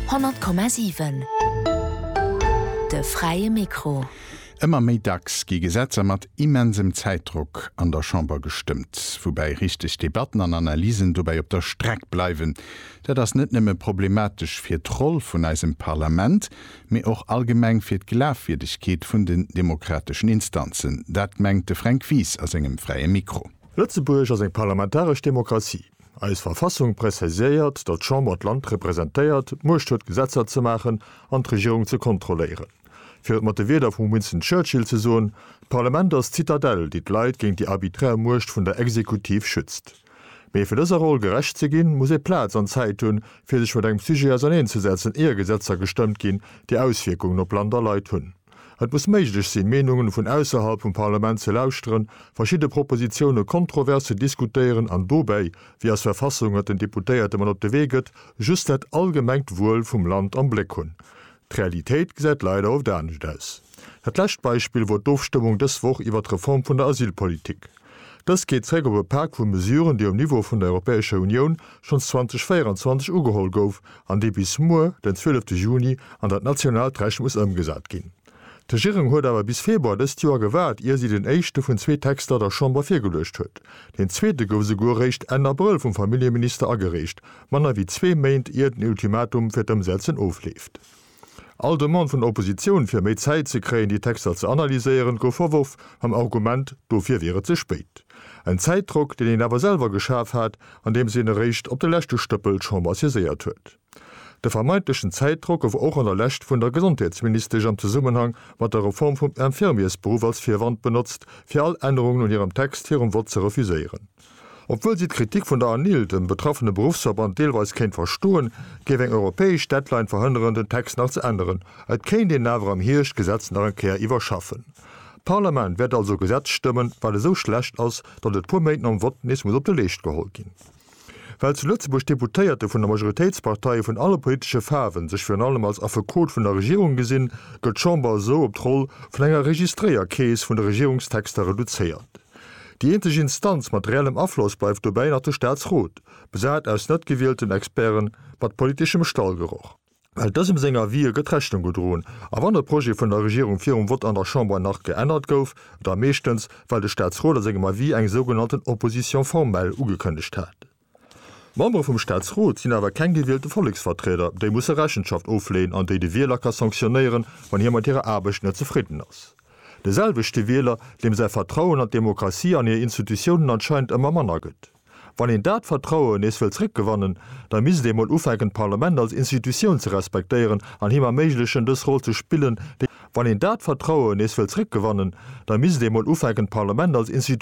100,7 De fräie Mikro. Ëmmer méi dacks gi Gesetzer mat immensem Zäitdrock an der Chamber gestëmmt, woubäi richteg Debatten an Analysen dobäi op der Streck bleiwen. Dat ass net nëmme problematesch fir d'Roll vun eisem Parlament, mee och allgemeng fir d'Glafwierdegkeet vun den demokrateschen Instanzen. Dat mengt de Fränk Wies a sengem fräie Mikro. Lëtzebuerg ass eng parlamentaresch Demokratie. Eis Verfassung preziséiert, datt d'Chamber d'Land representéiert, d'Muecht huet Gesetzer ze maachen an d'Regierung ze kontrolléieren. Fir et mat de Wierder vum Winston Churchill ze soen, D'Parlament ass d'Zitadell, déi d'Leit géint déi arbiträr Muecht vun der Exekutiv schützt. Mee fir dëser Roll gerecht ze ginn, muss ee Plaz an Zäit hunn, fir sech mat engem Sujet auserneenzesetzen, ier Gesetzer gestëmmt ginn, déi Auswierkungen op Land a Leit hunn. Et muss méiglech sinn, Meenungen vun ausserhalb vum Parlament ze lauschteren, verschidde Propositiounen kontrovers ze diskutéieren an dobäi, wéi eis Verfassung et den Deputéierte mat op de Wee gëtt, just dat allgemengt Wuel vum Land am Bléck hunn. D'Realitéit gesäit leider oft anescht aus. Dat lescht Beispill wor d'Ofstëmmung dës Woch iwwert d'Reform vun der Asylpolitik. Dëst geet zréck op e Pak vu Mesuren, dee um Niveau vun der Europäescher Unioun schonns 2024 ugeholl gouf an dee bis muer, den zwielefte Juni, an dat nationaalt Recht muss ëmgesat ginn. D'Regierung huet awer bis Februar dëst Joer gewaart, ier si den éischte vun zwee Texter der Chamber virgeluecht huet. Deen zweete gouf esouguer eréischt Enn Abrëll vum Familljeminister agereecht, manner wéi zwee Méint ier den Ultimatum fir d'Ëmsetzen ofleeft. All Demande vun der Oppositioun, fir méi Zäit ze kréien, déi Texter ze analyséieren, gouf verworf, mam Argument, dofir wier et ze spéit. En Zäitdrock, deen een awer selwer geschaf hat, andeems een eréischt op de leschte Stëppel d'Chamber saiséiert huet. De vermeintlechen Zäitdrock gouf och an der Lescht vun der Gesondheetsministesch am Zesummenhang mat der Reform vum Infirmiersberuff als Virwand benotzt, fir all Ännerungen un hirem Text virum Vott ze refuséieren. Obwuel si d'Kritik vun der ANIL, dem betraffene Beruffsverband, deelweis kéint verstoen, géif eng europäesch Deadline verhënneren, den Text nach ze änneren. Et kéint een awer am Hierscht d'Gesetz nach eng Kéier iwwerschaffen. D'Parlament wäert also e Gesetz stëmmen, wat esou schlecht ass, datt et puer Méint nom Vott nees muss op de Leescht geholl ginn. Well zu Lëtzebuerg d'Deputéierte vun de Majoritéitsparteie vun alle politesche Faarwen sech virun allem als Affekot vun der Regierung gesinn, gëtt d'Chamber esou op d'Roll vun enger Registréierkeess vun de Regierungstexter reduzéiert. Déi eenzeg Instanz mat reellem Afloss bleift dobäi nach de Staatsrot, besat aus net gewielten Experten mat politeschem Stallgeroch. Well dësem seng Avisë gëtt Rechnung gedroen, a wann e Projet vun der Regierung virum Vott an der Chamber nach geännert gouf, da meeschtens, well de Staatsrot a sengem Avis eng sougenannten Opposition formelle ugekënnegt hat. D'Membere vum Staatsrot sinn awer keng gewielte Volleksvertrieder, déi musse Rechenschaft ofleeën an déi de Wieler ka sanktionéieren, wann hie mat hirer Aarbecht net zefridden ass. De selwechte Wieler, deem säi Vertrauen an d'Demokratie an hir Institutiounen anscheinend ëmmer manner gëtt. Wann een dat Vertrauen nees wëll zréckgewannen, da misst ee mol ufänken d'Parlament als Institutioun ze respektéieren an him erméiglechen dës Roll ze spillen, déi Wann een dat Vertrauen nees wëll zréckgewannen, da misst ee mol ufänken d'Parlament als Institutioun.